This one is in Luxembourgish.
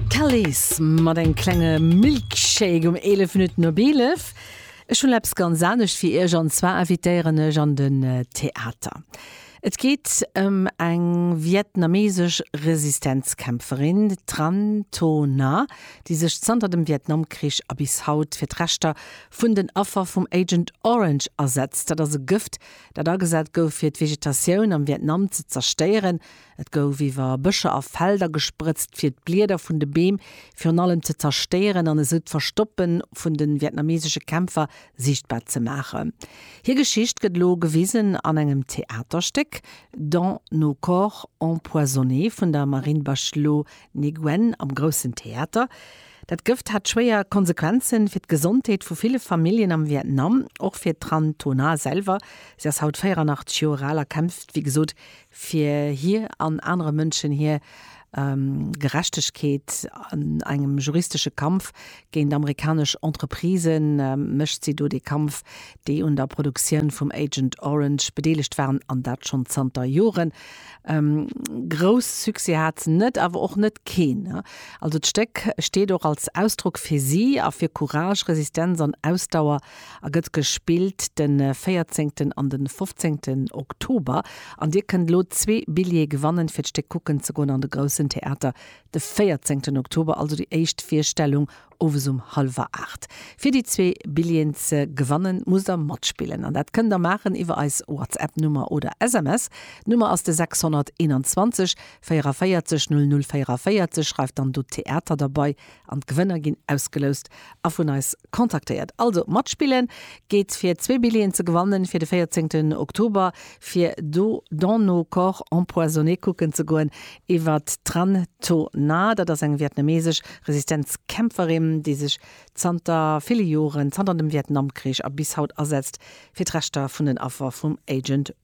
D'Calés mat engem klenge Milkshake um 11 Minutten op 11. Ech hunn eppes ganz anescht fir Iech, an zwar invitéieren ech an den Theater. Et geet ëm eng vietnamesesch Resistenzkämpferin, d'Tran Tho Na, déi sech zanter dem Vietnamkrich a bis haut fir d'Rechter vun den Affer vum Agent Orange asetzt. Dat ass e Gëft, dat agesat gouf, fir d'Vegetatioun am Vietnam ze zerstéieren, Et gouf iwwer Bëscher a Felder gesprëtzt, fir d'Blieder vun de Beem virun allem ze zerstéieren an esou d'Verstoppe vun de vietnamesesche Kämpfer siichtbar ze maachen. Hir Geschicht gëtt elo gewisen an engem Theaterstéck, Dans nos corps empoisonnés vun der Marine Bachelot Nguyen am Groussen Theater. Dat Gëft hat schwéier Konsequenze fir d'Gesondheet vu ville Familljen am Vietnam, och fir d'Tran Tho Nhat selwer. Si ass haut 84 Joer al a kämpft, wéi gesot, fir hir an anere Mënschen hir Gerechtegkeet an engem juristesche Kampf géint amerikanesch Entreprisen, mécht si do dee Kampf, déi un der Produktioun vum Agent Orange bedeelegt waren, an dat schonn zanter Joren. Grouss Succès hat se net, awer och net keen. Also d'Stéck steet och als Ausdrock fir si a fir Courage, Resistenz an Ausdauer a gëtt gespillt de 14 an de 15 Oktober an dir kënnt elo zwee Billjeeë gewannen fir d'Stéck kucken ze goen an de Groussen Theater de 14 Oktober, also déi éischt Virstellung owes um hallwer 8. Fir déi zwee Billjeeën ze gewannen musst der matspillen an dat kënnt der maachen iwwer eis Whatsapp Nummer oder SMS. D'Nummer ass de 621 44 00 44, schreift dann do Theater derbei an d'Gewënner ginn ausgeloust a vun eis kontaktéiert. Also matspillen geet fir zwee Billjeeën ze gewannen fir de 14 Oktober fir do Dans nos corps empoisonnés kucken ze goen iwwer d'Tran To Na, dat ass eng vietnamesesch Resistenzkämpferin déi sech zanter ville Joren, zanter dem Vietnamkrich a bis haut asetzt fir d'Rechter vun den Affer vum Agent